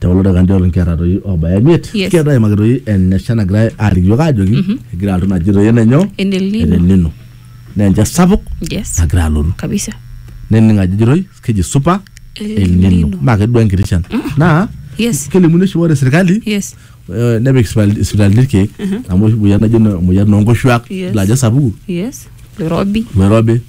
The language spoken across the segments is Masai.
te kulo dakikani tiatua nkera toi oobaya imiet Yes. kigira toi aimaki toi enesha nagirai aaliki iyiook aajoki Mhm. egira alotu naji toi enenyo En El Nino. enelino naa enchan sapuk Yes. nagira alotu Kabisa. nening ajo ejo toi keji supa El elnino Nino. maa kedua enkiti shan naa Yes. kelimuni oshi ore sirkali Yes. eh, nepik sipitali- isipitalini irkeek amu oshi moyian najo ina- moyian oonkoshuak Yes. ilo ajo sapuku Yes. Nairobi. loirobi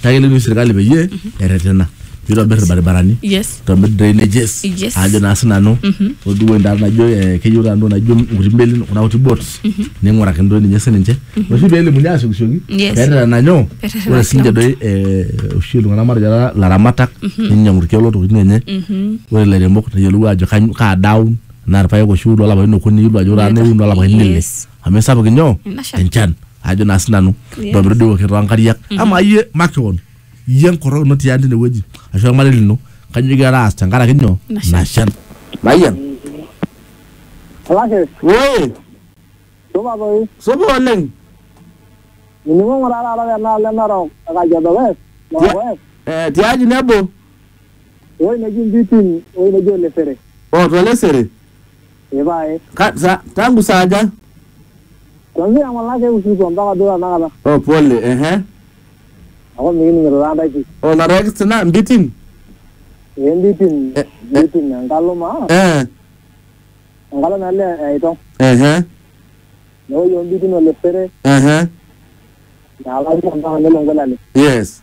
Kake kelotu sirkali peyie mhm. erretena nitobir irbaribarani nitobir drainages ajo naa sinanu mhm. oduo endaa najo eh, keyieu taa ntoki naijo nkuti melin kuna kuti boats mhm. ning'uraki ntoki ninye sininche mhm. oshi peelimuni asiokisioki peterena nyoo ore sininche doi eh, oshi iltung'anak matejo taata laramatak ninyang'u irkeek lotokitin enye ore ilairemok neyiolou ajo kaa daa aun naa irpaek oshi iun lolapaitin okuni iyiolo ajo ore taa naa iun lolapaitin ile amu esapuk inyoo Ena shan. enchan ajo naa sinanu Yes. ntobiru dii woke toonkariak ama iyie makeon iyie enkorok ino tiang tine wueji ashu ormarei lino kanyoo igira aas tenkaraki nyoo Ina shan. ina shan mayian Olashe, woi supa toi. supa oleng Nining'o ng'ura taata tenaalo enarok e Kajiado West, Narok West, Eh, tiaji nebo ewuei neji Mbitin, ewuei neji Olesere. otolesere Ee pae. Ka, sa, tangu saa aja? Kwanzia ng'ola ake usiku mpaka duo tanakata. Oh, pole, ehe. Aku mikining'ito taa ntae pii. Oh, narek sina mbitin? Ee mbitin, Eh, mbitin enkalo maa, Eh, enkalo naa ele aitong. ehe, Newoi ombitin olesere, ehe. naalari mpaka nelo ngolale. Yes.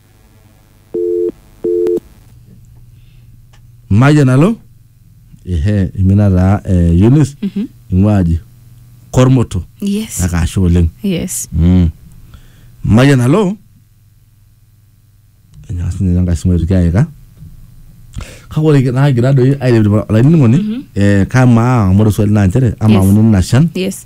mayian alo ehe imina taa eh, Eunice ing'ua aji kormoto yes kake ashe oleng yes Mm. mayian alo enyaa sinye enkae simu aitoki aika kake ore naagira doi airepirip olainining'oni eh, kamaa amu ore swali naa nchere amaa Yes. auni ina shan yes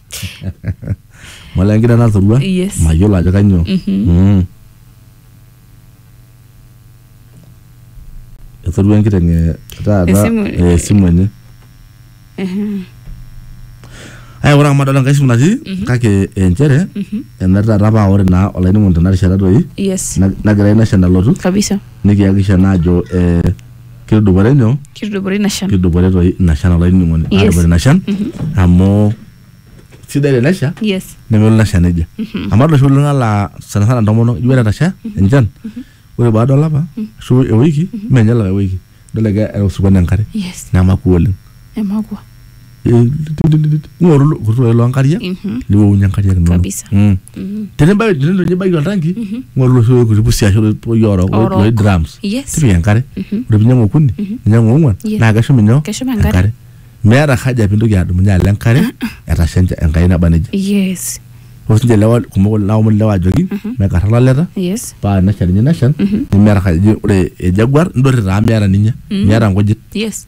mole enkida natorua Yes. mayiolo ajo kanyoo Mm. etorua enkiteng eh, taata Esimu- eh, esimu enye aya ore amu adol enkae simu natii kake eh, nchere ena taata paa ore naa olainining'oni tena rishata doi yes nag- nagira ina shan alotu kabisa nikiyakisha naa ajo eh, kitudupore nyoo kitudupore ina shan kitudupore toi ina shan olainining'oni Yes. aatupore ina shan amu sidai tenesha yes nemelo ina shan nejia amu adol oshi kulie tung'anak laa sana sana ntomonok ijo ore etasha enchan ore baada olapa ashu ewiki mee ninye olapa ewiki idol egira era osokoni enkare yes nemakua oleng emakua eh, ng'oru lo- kutu loo nkariak Mhm. niwowunye nkariak inono Kabisa. Mm. Mhm. tenibaki tenibaki oltanki ng'oru loshi oikuti pusi ashu loi orok Orok. loi drums Yes. tipika enkare Mhm. ore pinyang'u okuni ninyang'u ong'uan Yes. naa keshum inyoo Keshum enkare. meeta haja pintoki adumunye alo enkare etasha encha- enkai naba nejia yes ore sinche lewa kumok naomon lewa ajoki mekarra laleta yes paa nesha ninye neshan nemeeta haja ore ejaguar ndorri taa meeta ninye meeta nkujit yes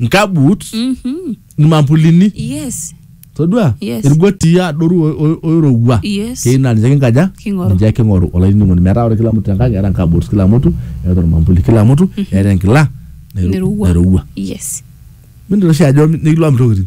nkabut Mhm. irmambulini yes todua Yes. irgotii adoru o- o- oirowua Yes. keyieu naa ninche kinkaja King'oru. ninche king'oru olainining'oni metaa ore kila mtu tenkang eeta nkabut kila mtu eeta ormambuli kila mtu eeta enkila nairu- Nairowua. nairowua yes mintoki oshi ajo nikilo amitokitin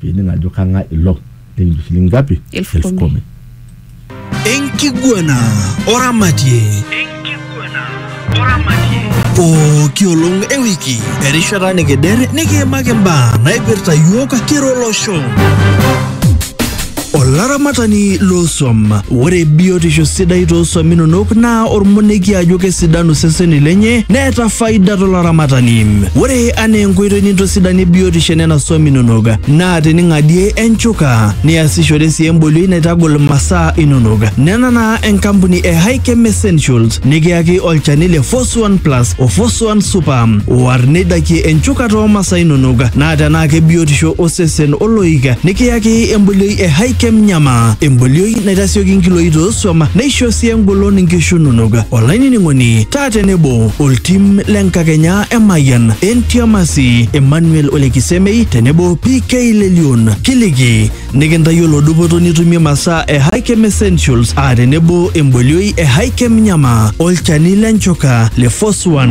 pining ajo kang'ae ilo nikincho shilingi ngapi Elfu elfu kumi. kumi enkiguana oramatie pooki olong ewiki erishata nikider nikiimaki mbaa naipirta yiok kira olosho Olaramatani loosuam. Ore biotisho sidai toosuam inonok naa ormonekie ajo kesidanu iseseni lenye neeta faida tolaramatani. Ore anaa enkoitoi nintosidanie biotisho enena suam inonok naa tening'adie enchuka niasishore sii embolioi naitagol masaa inonok. Nena naa enkampuni e Hikem Essentials nikiyaki olchani le Fos 1 Plus o Fos 1 Super oar neidakie enchuka too masaa inonok naa tenaa kebiotisho osesen oloik nikiyaki embolioi e Hikem Nyama, embolioi naitasioki nkiloi too suam neisho sii engolon nkishu inonok. Olainining'oni, taa tenebo oltim le Nkakenya e Mayian, Entiamasi, Emmanuel Ole Kisemei tenebo PK Lelion kiliki nikintayiolo dupoto nitumie masaa e Hikem Essentials aa tenebo embolioi e Hikem Nyama, olchani le nchoka le Foswan.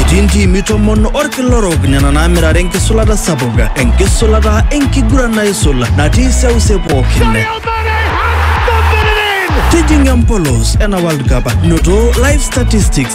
Etii ntiimi tomon orkila orok nena naamirare enkisulata sapuk, enkisulata enkiguran naisul natii seuse pookin. Tijing'a empolos ena World Cup, noto live statistics,